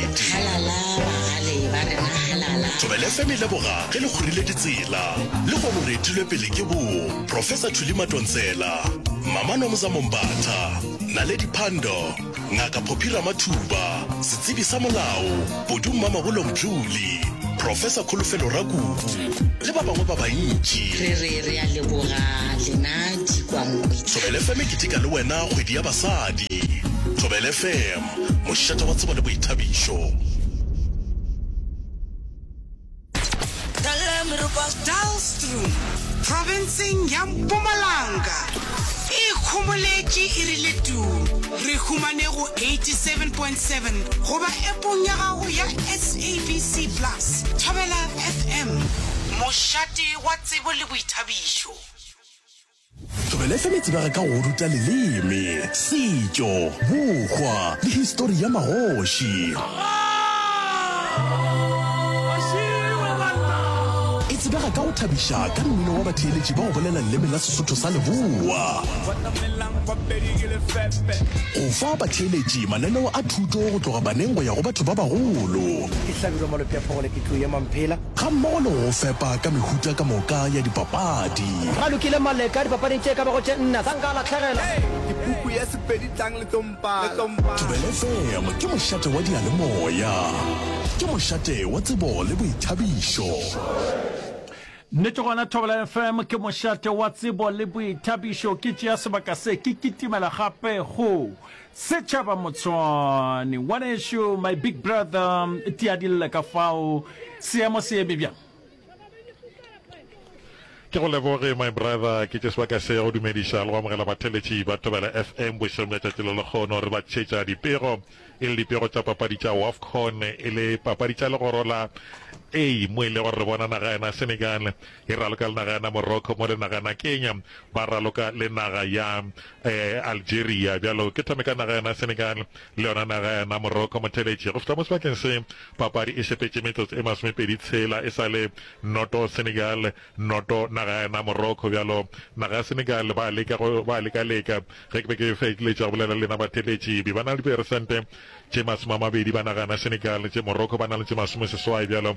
Halala bagale ba rena halala. Thobela FM e leboga ge le kgorile ditsela. Lehono re etilwe pele ke bo Professor Thuli Matontsela, Mama Nomza Mombatha, Naledi Pandor, Ngaka Phophi Ramathuba, Setsebi sa Molao, Bodu Mmamabolo Mdluli, Professor Kholofelo Rakubu le ba bangwe ba bantši. Re re re a leboga lena dikwankwetla. Thobela FM e keteka le wena kgwedi ya basadi. Thobela FM. Mošate wa tsebo le boithabišo. Daalstroom, profenseng ya Mpumalanga, e ikhomoletše e rile tuu. Re humane go 87.7 goba App-ong ya gago ya SABC Plus. Thobela FM, mošate wa tsebo le boithabišo. Thobela FM e tsebega ka go ruta leleme, setšo, bokgwa le histori ya magoši. E tsebega ka go thabiša ka mmino wa batheeletši ba go bolela leleme la Sesotho sa Leboa, go fa batheeletši mananeo a thuto go tloga baneng go ya go batho ba bagolo, Ke Hlabirwa Malopheaphogole, ke tlo ema mphela. gammogo le go go fepa ka mehuta ka moka ya dipapadi. Ralokile Maleka, Dipapading tše e ka bago tše nna tsa nka a lahlegela. Dipuku ya Sepedi tlang le tlo mpala. Thobela FM ke mošate wa diyalemoya. Ke mošate wa tsebo le boithabišo. Nnete gona Thobela FM ke mošate wa tsebo le boithabišo. Ke tšea sebaka se ke kitimela gape go Setšhaba Motshwane, ngwanešu, my big brother, tiadille ka fao. Seemo se eme bjang? Ke go leboge my brother, ke tše sebaka se ya go dumediša le go amogela batheletši ba Thobela FM bošegong bja tšatši le lekgono re ba tšhetša dipego e le dipego tša papadi tša Wafcon e le papadi tša legoro la A mo e le gore re bona naga yena Senegal e raloka le naga yena Morocco mo le naga yena Kenya ba raloka le naga ya Algeria, bjalo ke thome ka naga yona Senegal le yona naga yona Morocco. Motheeletši, go fihla mo sebakeng se, papadi e sepetše metsotso e masomepedi tshela e sa le noto Senegal, noto naga yona Morocco. Bjalo naga ya Senegal ba leka go ba leka-leka. Ge ke be ke feleletša go bolela le lena batheeletši, be ba na le diperesente tše masome a mabedi ba naga yona Senegal, tše Morocco ba na le tše masomeseswai. Bjalo.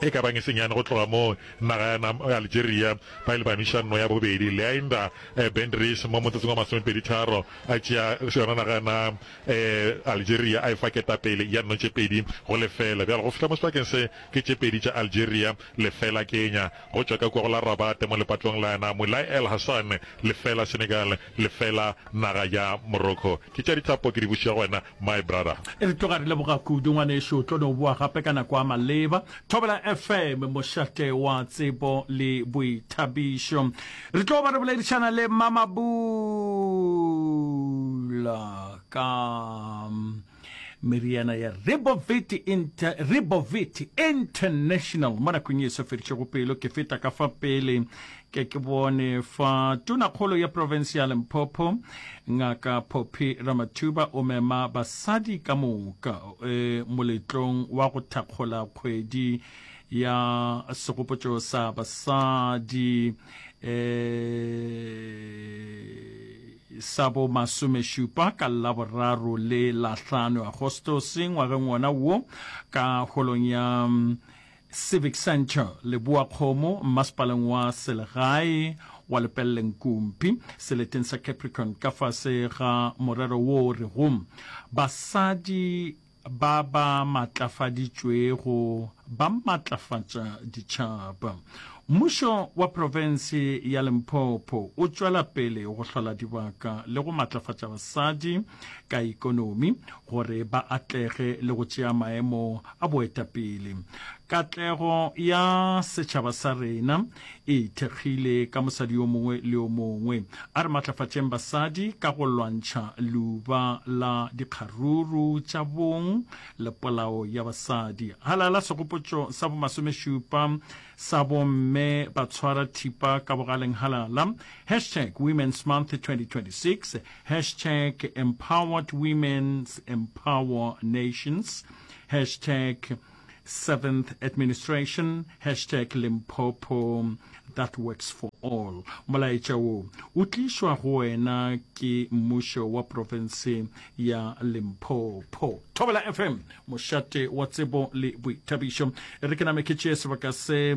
E ka ba nyesenyane go tloga moo, naga ya nam ya Algeria ba ile ba nwiša nno ya bobedi, Leainda eh, Bendries mo motsotsong wa masomepedi tharo a tšea yona naga ya nam eh, Algeria a e fa ketapele ya nno tše pedi go lefela. Bjalo go fihla mo sebakeng se ke tše pedi tša Algeria lefela Kenya go tšwa ka kua go la Rabat mo lepatong la ya nam la El Hassan lefela Senegal Lefela naga ya Morocco ke tša dithapo ke di bušo ya go wena my brother. E re tloga re leboga kudu ngwanešu o tlo no boa gape ka nako a maleba Thobela FM mošate wa tsebo le boithabišo re tlo ba re boledišana le Mamabula ka Meriana ya Ribovit, Inter, Ribovit International mo nakong e sa fedišego pelo. Ke feta ka fa pele ke ke bone fa tonakgolo ya province ya Limpopo ngaka Poppy Ramathuba o mema basadi ka moka e, moletlong wa go thakgola kgwedi ya segopotšo sa basadi e, sa bo masomešupa ka Laboraro le Lahlano Agostose ngwageng wona wo ka holong ya Civic Centre Leboakgomo mmasepaleng wa selegae wa Lepelleng Kumpi seleteng sa Capricorn ka fase ga morero wo o rego Basadi Ba ba maatlafaditšwego ba maatlafatša ditšhaba. Mmušo wa profense ya Limpopo o tšwela pele go hlola dibaka le go maatlafatša basadi ka ikonomi gore ba atlege le go tšea maemo a boetapele. Katlego ya setšhaba sa rena e ithekgile ka mosadi yo mongwe le yo mongwe. A re matlafatšeng basadi ka go lwantšha leuba la dikgaruru tša bong le polao ya basadi. Halala segopotšo sa bomasomešupa sa bomme ba tshwara thipa ka bogaleng halala, hashtag Women's Month 2026, hashtag Empowered Women's Empower Nations, hashtag Seventh Administration, hashtag Limpopo, that works for all. Molaetša wo o tlišwa go wena ke mmušo wa profense ya Limpopo. Thobela FM, mošate wa tsebo le boithabišo. E re ke name ke tšee sebaka se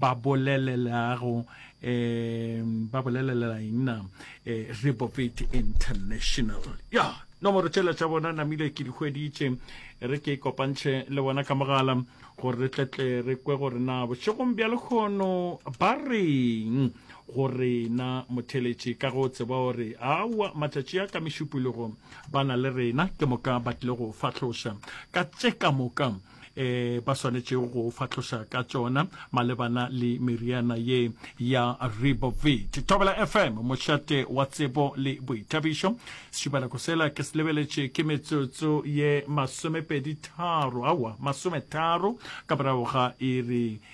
ba bolelelago um ba bolelelela eng na eh, reprobate international ya nomoro tšela tša bona namile ke di hweditše re ke kopantšhe le bona ka mogala gore re tletle re kwe gore na bošegong bja lekgono ba reng gore na motheletši ka go tseba gore aowa matšatši a ka mešupologo ba na le rena ke moka ba tlile go fahloša ka tše ka moka e ba swanetšego go fahloša ka tšona malebana le meriana ye ya ribovit thobela fm mošate wa tsebo le boithabišo sešubanako sela ke se lebeletše ke metsotso ye masomepedi tharo aowa masometharo ka morago ga iri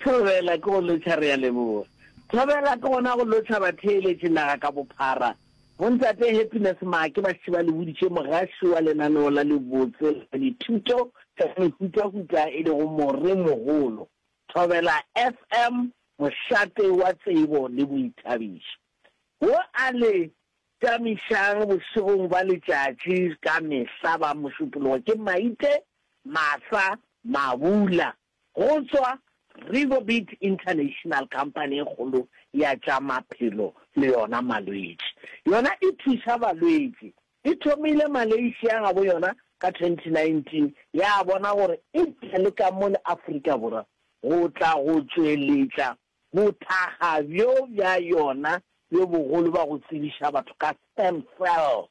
Thobela ke go lotšha re a leboga. Thobela ke gona go lotšha batheeletši naga ka bophara. Bontate Happiness Maake ba šetše ba le boditše mogaši wa lenaneo la lebotse la dithuto tša mehutahuta e lego More Mogolo. Thobela FM, mošate wa tsebo le boithabišo. Wo a le. Tamišang bošegong bja letšatši ka mehla ba mošupologo ke maite, masa, mabula. Go tšwa Rivobit International Company e kgolo ya tša maphelo le yona malwetši. Yona e thuša balwetši. E thomile Malaysia gabo yona ka 2019 ya bona gore e tle le ka mo le Afrika Borwa go tla go tšweletša Bothakga bjo bja yona bjo bogolo ba go tsebiša batho ka stem cell,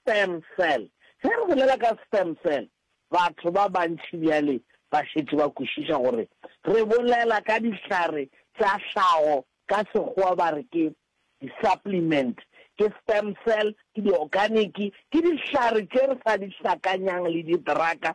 stem cell. Ge re bolela ka stem cell, batho ba bantši bjale ba šetše ba kwešiša gore re bolela ka dihlare tša hlago, ka Sekgowa ba re ke di-supplement. Ke stem cell, ke di-organic, ke dihlare tše re sa di hlakanyang le ditraka.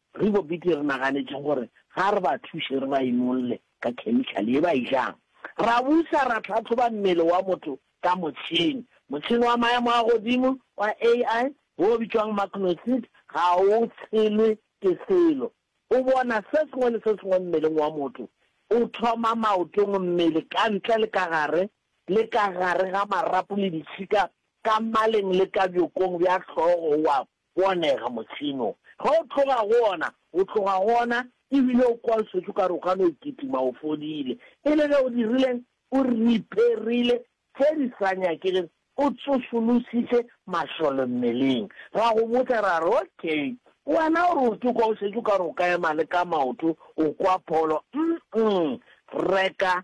Re bo bete re naganetše gore ga re ba thuše re ba inolle ka khemikhale ye ba e jang. Ra busa ra tlhahloba mmele wa motho ka motšhene. Motšhene wa maemo a godimo wa AI wo o bitšwago Magnoseed ga o tshelwe ke selo. O bona se sengwe le se sengwe mmeleng wa motho, o thoma maotong, mmele, ka ntle le ka gare, le ka gare ga marapo le ditšhika, ka maleng le ka bjokong bja hlogo wa Go a nega, Modimo. Ge o tloga go ona, o tloga go ona, e bile o kwa o šetše o ka re o ka no e kitima, o fodile. E le ge o dirileng? O ripherile tše di sa nyakegego, o tsošolosiše mašole mmeleng. Ra go botša ra re, Okay, wena o re o ke kwa o šetše o ka re o ka ema le ka maoto, o kwa pholo. Umm-mm. Reka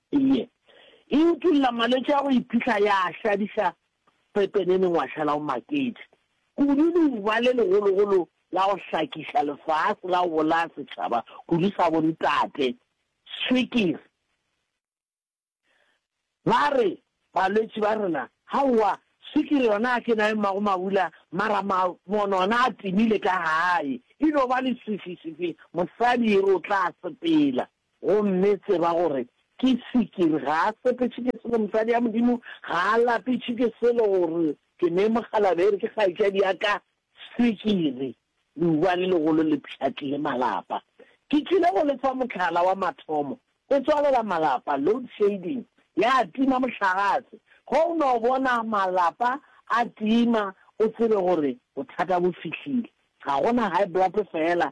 Iye, e utulla malwetši a go iphihla ya a hladiša pepeneneng wa šala o maketše kudu leuba le legologolo la go hlakiša lefase la go bolaya setšhaba kudu sa bontate, swikiri. Ba re balwetši ba rena, Haowa, swikiri yona a ke na e mmago mabula mara mabono ona a timile ka gae, e no ba leswiswiswi mosadi e re o tla sepela. Gomme tseba gore ke sikiri, ga a sepetše ke selo, mosadi ya Modimo ga a lapetše ke selo, gore ke ne mokgalabje, ere ke kgaetšadi ya ka sikiri. Leuba le legolo le pšhatlile malapa. Ke tšwile go le fa mohlala wa mathomo, e tswalela malapa, load shading, ya tima mohlagase. Ge o no bona malapa a tima, o tsebe gore bothata bo fihlile. Ga go na high blood feela,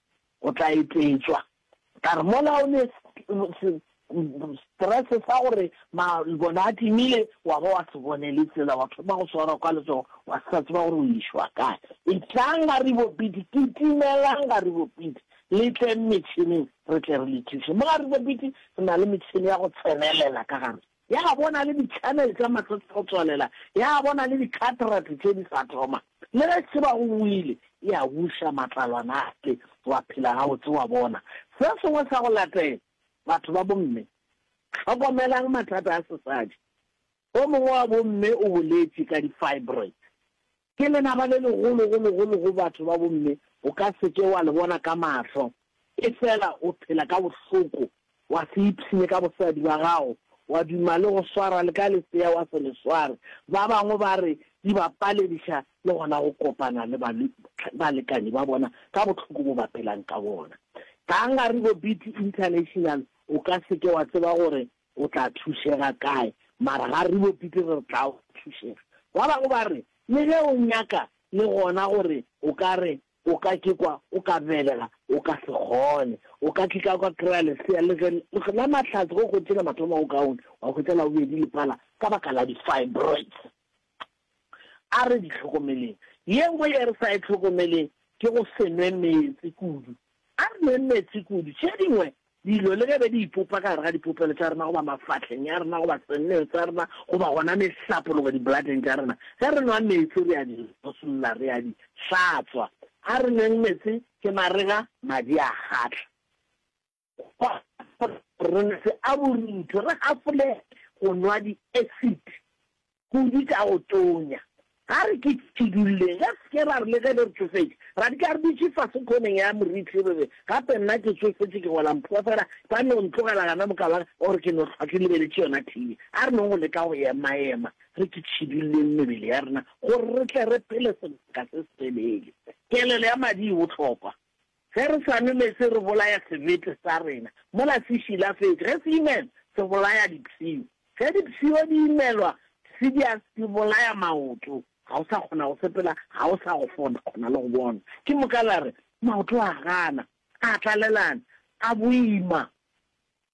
o tla etšwa. Ka re mola o ne stress sa gore mabone a timile wa ba wa se bone le tsela wa thoma go swarwa kwa letsogo wa sa tseba gore o išwa kae. Etlang ga re bopiti, kitimelang ga re bopiti, le tleng metšhineng re tle re le thuše. Mo ga re bopiti re na le metšhini ya go tsenelela ka gare. Ya bona le di-channel tša matsatsi a go tswalela, ya bona le di-cataract tše di sa thoma. Le ge Tshebago o ile, e a buša matlalwana ale, wa phela gabotse, wa bona. Se sengwe sa go latela, batho ba bomme, hlokomelang mathata a sesadi. O mongwe wa bomme o boletše ka di-fibroids. Ke lenaba le legolo go legolo go batho ba bomme, o ka se ke wa le bona ka mahlo, efela o phela ka bohloko, wa se ipshine ka bosadi ba gago, wa duma le go swara le ka lesea wa se le sware, ba bangwe ba re di ba palediša le gona go kopana le balekane ba bona ka bohloko bo ba phelang ka bona. Ga nkare bo Beauty International o ka se ke wa tseba gore O tla thušega kae? Mara ga re bopi ke re re tla o thušega. Ba bangwe ba re, Le ge o nyaka le gona gore o ka re o ka ke kwa o ka belega, o ka se kgone. O ka ke ka kwa kry-a lesea le ge le la mahlatse go kgwetše la mathomo go kaone, wa hwetša la bobedi le pala ka baka la di-fibroids. A re di hlokomeleng. Ye nngwe ye re sa e hlokomeleng ke go se nwe meetse kudu. A re nweng meetse kudu. Tše dingwe dilo le ge be di ipopa ka gare ga dipopelo tša rena goba mafahleng ya rena goba senneng sa rena goba gona mehlapologo dibuladeng tša rena, ge re nwa meetse re a di losolla, re a di hlatswa. A re nweng meetse ke marega, madi a kgahla. Kwa rona se a borutho, re gafole go nwa di-acid kudu tša go tonya. Ga re ke tšhidulleng, re se ke ra re le ge le re tšofetše, ra di ka re dutše fase khoneng ya morithi re re, Gape nna ke tšofetše, ke gola mpho fela, ba no ntlogela gana moka ba gore ke no hlwa ke lebeletše yona TV. A re nong go leka go emaema, re ke tšhidulleng mebele ya rena gore re tle re phele sebaka se setelele. Kelelo ya madi e bohlokwa. Ge re sa nwe meetse re bolaya sebete sa rena mola se šilafetše. Ge se imela, se bolaya dipshio. Ge dipshio di imelwa, se di a di bolaya maoto. Ga o sa kgona go sepela, ga o sa go fona, kgona le go bona. Ke moka la re, Maoto a gana, a tlalelana, a boima.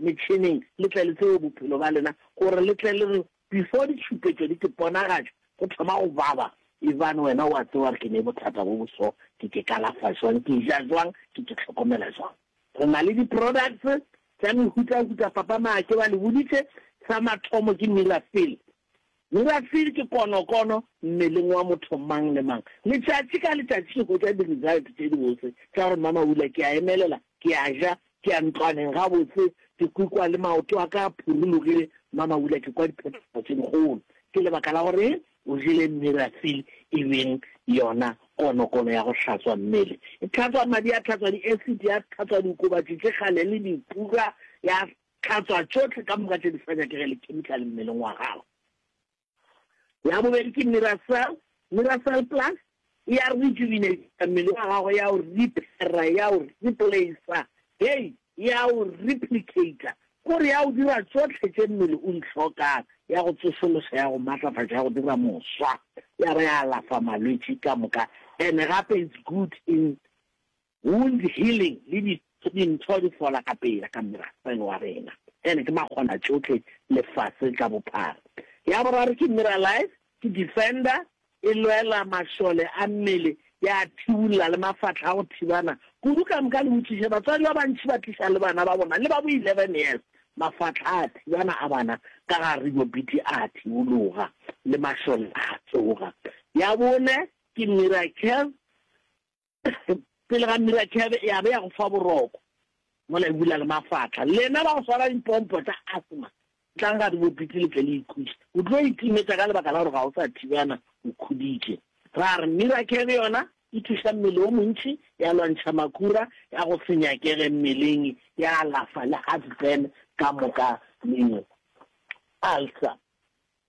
metšhineng le tle le tsebe bophelo ba lena gore le tle le re before ditšhupetšo di ke ponagatšo go thoma go baba ebane wena o a tseba gore ke ne bothata bo bo so ke ke kalafa jwang ke ja jwang ke ke tlhokomela jwang re na le di products tša mehutahuta papa maake ba le boditše sa mathomo ke mirafill Uracil ke konokono mmeleng wa motho mang le mang. Letšatši ka letšatši ke hwetša di-result tše dibotse tša gore mama Ula ke a emelela, ke a ja, ke a ntlwaneng gabotse, ke kwikwa le maoto a ka a phurulogile. Mama Ula ke kwa diphetogo tše dikgolo. Ke lebaka la gore eng o jele Miracil e beng yona konokono ya go hlatswa mmele. E tlhatswa madi, ya tlhatswa di-acid, ya tlhatswa diokobatši tše kgale le dipura, ya Hlatswa tšohle ka moka tše di sa nyakege le kemikale mmeleng wa gago. Ya bobedi ke Miracell. Miracell Plus e a rejuvenate-a mmele wa gago, e a o repair-a, e a o replace-a, hei, e a o replicate-a, ke re e a o dira tšohle tše mmele o di hlokang, e a go tsošološa, e a go matlafatša, e a go dira moswa, ya ba ya alafa malwetši ka moka, and gape it's good in Wound healing le di dintho di fola ka pela ka merafe wa rena ene ke makgona tšohle lefase ka bophara. Ya boraro ke Miralife ke defender e lwela mašole a mmele ya a thibolla le mafahla a go thibana kudu ka moka le botšiše batswadi ba bantši ba tliša le bana ba bona le ba bo 11 years mafahla a thibana a bana ka ga ribobiti a thibologa le mašole a tsoga. Ya bone ke Miracare pele ga mirathebe ya be ya go fa boroko mola e bula le mafatla lena ba go swara dipompo tša asthma tlang ga di bopitse le tle le ikhuša o tlo itimetša ka lebaka la gore ga o sa thibana o khuditše ra re mirathebe yona e thuša mmele o montši ya lwantšha makura ya go se nyakege mmeleng ya alafa le heartburn ka moka le alsa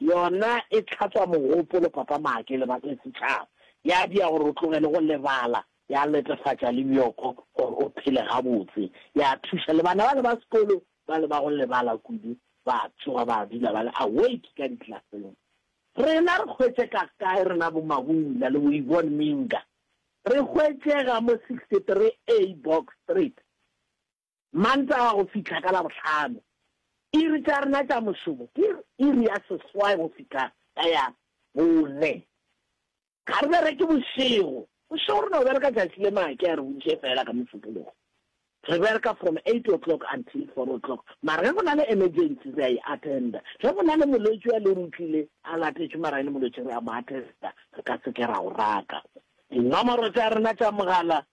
Yona e tlhatswa mogopolo, Papa Maake, lebaka le setšhaba. Ya dia gore o tlogele go lebala, ya letefatša le bjoko gore o phele gabotse. Ya thuša le bana bale ba sekolo bale ba go lebala kudu, ba tsoga ba dula ba le awake ka diklaseng. Rena re hwetše ka kae rena bo Mabula le bo Yvonne Minga? Re hwetšega mo 63A Box Street. Mantaga go fihla ka Labohlano. Iri tša rena tša mošomo ke iri ya seswai go fihla ka ya bone. Ga re bereke bošego. Bošego re no bereka tšatši le make a re bontšhe fela ka Mosupologo. Re bereka from eight o'clock until four o'clock mara ge go na le emergency re a e attenda. Ge go na le molwetši a le ruri o tlile a latetšwe mara e le molwetši re a mo attenda re ka se ke ra o raka. Dinomoro tša rena tša mogala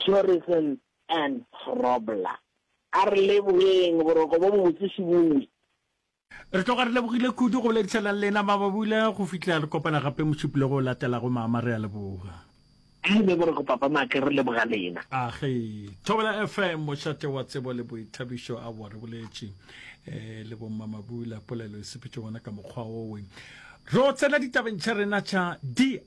Thoresen and Grobler. A re leboeng boroko bo bobotse Sebooi. Re tloga re lebogile kudu go boledišana le lena Mababula go fihlela re kopana gape mošupolong o latelago Mama re a leboga. A be boroko Papa Make re leboga lena. A ge. Thobela FM mošate wa tsebo le boithabišo aowa re boletše le bo Mma Mabula polelo e sepetše gona ka mokgwa owe. Ro tsena ditabeng tša rena tša diagametse.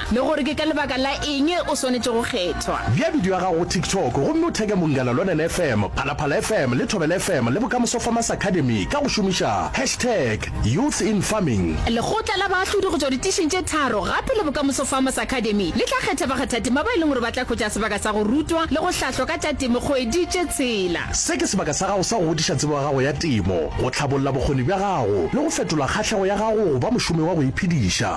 le gore ke ka lebaka la eng o swanetše go kgethwa. Bea bidio ya gago go TikTok gomme o theke Mongala Lonene FM, Phalaphala FM le Thobela FM le Bokamoso Farmers Academy ka go šomiša hashtag Youth in Farming. Lekgotla la baahlodi go tšwa ditišing tše tharo gape le Bokamoso Farmers Academy le tla kgetha bakgathatema ba e leng gore ba tla hwetša sebaka sa go rutwa le go hlahlwa ka tša temo kgwedi tše tshela. Se ke sebaka sa gago sa go godiša tsebo ya gago ya temo, go hlabolla bokgoni bja gago le go fetola kgahlego ya gago go ba mošomi wa go iphediša.